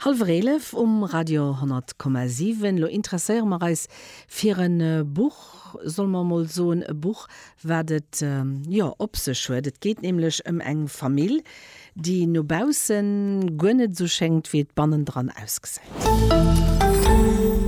Halwer eelef um Radio 100,7. Lo interesséiere mer eis fir e Buch, solle mer emol soen, e Buch, wat et jo op sech huet. Et geet nämlech ëm eng Famill, déi no baussen guer net esou schéngt, wéi et bannendran ausgesäit.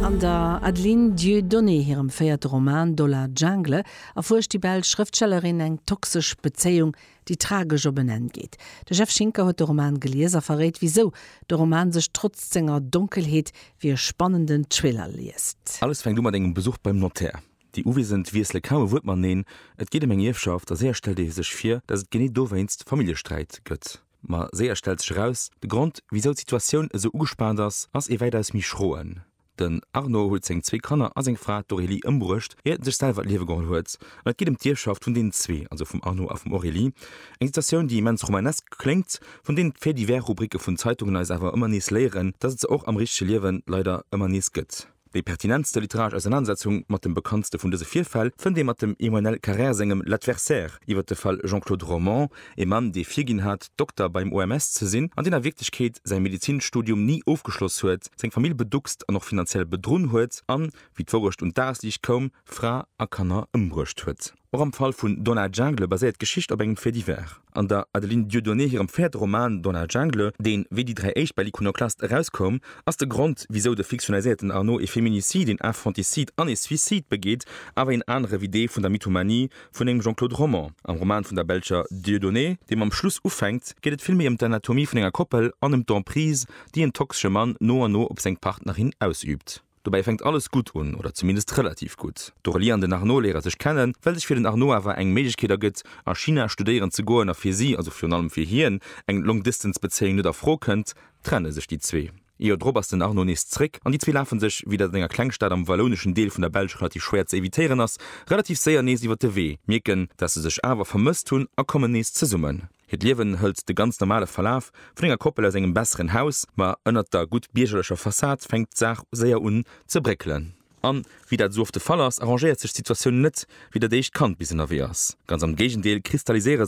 An der Adeline Dieudonné hirem véierte Roman Dollar Jungle erfuerscht déi belsch Schrëftstellerin eng toxesch Bezéiung, déi tragesch op en Enn geet. De Jeff Schinker huet de Roman gelies a verréit wisou de Roman sech trotzt senger Donkelheet wéi e spannenden Thriller liest. Alles fänkt u mat engem Besuch beim Notär. Déi Uwiesend wiessele kaum e Wuert mateneen, et geet ëm eng Ierfschaft a séier stellt ee sech vir, datt et genee dowéinst Familljesträit gëtt. Ma séier stellt sech eraus, de Grond wisou d'Situatioun esou ugespaant ass, ass ee wäitaus méi schroen. Den Arnaud huet seng zwee Kanner a seng Fra, d'Aurélie, ëmbruecht, ier en sech selwer d'Liewe geholl huet. An et geet ëm d'Ierfschaft vun deenen zwee, also vum Arnaud a vum Aurélie. Eng Situatioun, déi immens romanesk kléngt, vun deenen d'Faits-divers-Rubricke vun Zeitungen eis awer ëmmer nees léieren, dass et se och am richtege Liewen leider ëmmer nees gëtt. Déi pertinentste literaresch Ausernanersetzung mat dem bekanntste vun dëse Virfäll fënnt ee mat dem Emmanuel Carrère sengem L'Adversaire iwwer de Fall Jean-Claude Romand, Ee Mann, dee virginn hat, Dokter beim OMS ze sinn, an deen a Wierklechkeet säi Medezinstudium ni ofgeschloss huet, seng Famill beduckst an och finanziell bedrunn huet an, wéi d'Wourecht un d'Dagesliicht koum, Fra a Kanner ëmbruecht huet. Och am Fall vun Dans la Jungle baséiert d'Geschicht op engem Fait divers. An der Adeline Dieudonné hirem véierte Roman Dans la Jungle, deen, wéi déi dräi éischt, bei l'Iconoclaste erauskoum, ass de Grond, wisou de fiktionaliséierten Arnaud ee Féminicide, een Infanticide an ee Suicide begeet, awer een anere wéi dee vun der Mythomanie, Vun engem Jean-Claude Romand. Am Roman vun der belscher Dieudonné, deem am Schluss ufänkt, geet et vill méi ëm d'Anatomie vun enger Koppel an ëm d'Emprise, déi en toxesche Mann no an no op seng Partnerin ausüübt. Dobäi fänkt alles gutt un, oder zumindest relativ gutt. D'Aurélie an den Arnaud léiere sech kennen, well sech fir den Arnaud awer eng Méiglechkeet ergëtt, a China studéieren ze goen, a fir si, also virun allem fir hien, eng Long-Distance-Bezéiung net a Fro kënnt, trenne sech déi zwee. Ee Joer drop ass den Arnaud nees zréck an déi zwee lafe sech, wéi dat an enger Klengstad am wallouneschen Deel vun der Belsch relativ schwéier ze evitéieren ass, relativ séier nees iwwer de Wee, mierken, dat se sech awer vermësst hunn a kommen nees zesummen. Hiert Liewen hëlt de ganz normale Verlaf vun enger Koppel aus engem besseren Haus, ma ënnert der gutt biergerlecher Fassad fänkt d'Saach séier un ze bréckelen. An, wéi dat esou oft de Fall ass, arrangéiert sech d'Situatioun net, wéi dat éischt Kand bis ënnerwee ass. Ganz am Géigendeel, kristalliséiere